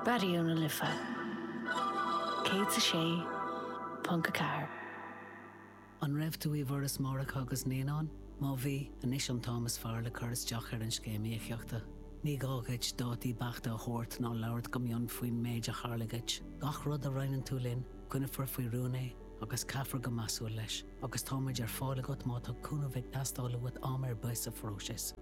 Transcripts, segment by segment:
Raidió na Life 106.4. An raibh tú i bhForas Máithreacha agus Naíonán? Má bhí, anois an t-am is fearr le cur isteach ar an Scéim Íocaíochta. Ní gá dhuit dátaí beachta a thabhairt ná labhairt go mion faoin méid a tharla dhuit. Gach rud a roinneann tú linn, coinneofar faoi rún é agus caithfear go measúil leis, agus táimid ar fáil agat má tá cúnamh ag teastáil uait am ar bith sa phróiseas.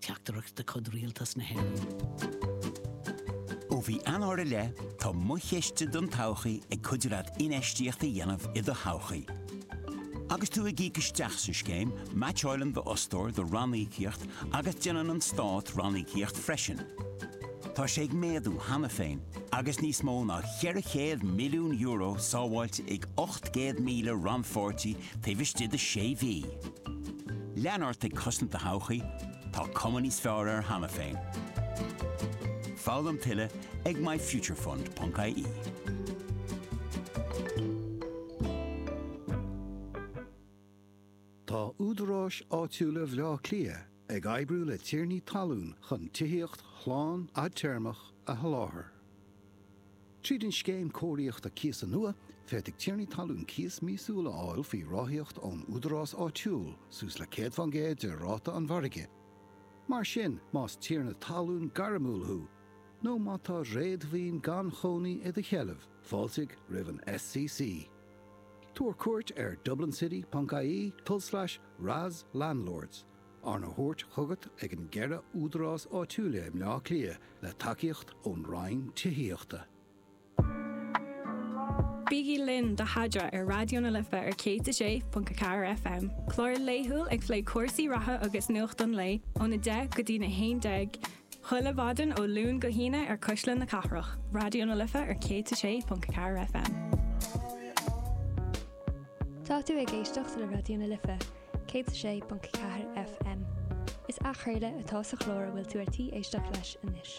Teachtaireacht de chuid Rialtas na hÉireann. Ó mhí Eanáir i leith, tá Mo Chiste don Todhchaí ag cuidiú leat infheistíocht a dhéanamh i do thodhchaí. Agus tú ag íoc isteach sa scéim, meaitseálann d'fhostóir do ranníocaíocht agus déanann an Stát ranníocaíocht freisin. Tá sé ag méadú cheana féin agus níos mó ná €400 milliún sábháilte ag 800,000 rannpháirtí taobh istigh de sé mhí. Lean ort ag cosaint do thodhchaí, tá cuma níos fearr air cheana féin. Foghlaim tuilleadh ag myfuturefund.ie. Tá údaráis áitiúla Bhaile Átha Cliath Ag oibriú le tiarnaí talún chun tithíocht shlán fhadtéarmach a sholáthar. Tríd an Scéim Cóiríochta Cíosa nua, féadfaidh tiarnaí talún cíos míosúil a fháil faoi ráthaíocht ón údarás áitiúil, suas le 100 faoin gcéad de ráta an mhargaidh. Mar sin, más tiarna talún gairmiúil thú nó má tá réadmhaoin gan chónaí i do sheilbh, fáiltigh roimh an SCC. Tabhair cuairt ar dublincity.ie, tulslais, Ras Landlords, arna thabhairt chugat ag na ceithre údarás áitiúla i mBleá Cliath le tacaíocht ón Roinn Tithíochta. Bígí linn do Haidra ar Raidió na Life ar 106.4 FM, clár laethúil ag plé cúrsaí reatha agus nuacht an lae ón 10 go dtí na 11 Chuile mhaidin ó Luan go hAoine ar Cuisle na Cathrach, Raidió na Life ar 106.4 FM. Tá tú ag éisteacht le Raidió na Life, 106.4 FM. Is athchraoladh atá sa chlár a bhfuil tú ar tí éisteacht leis anois.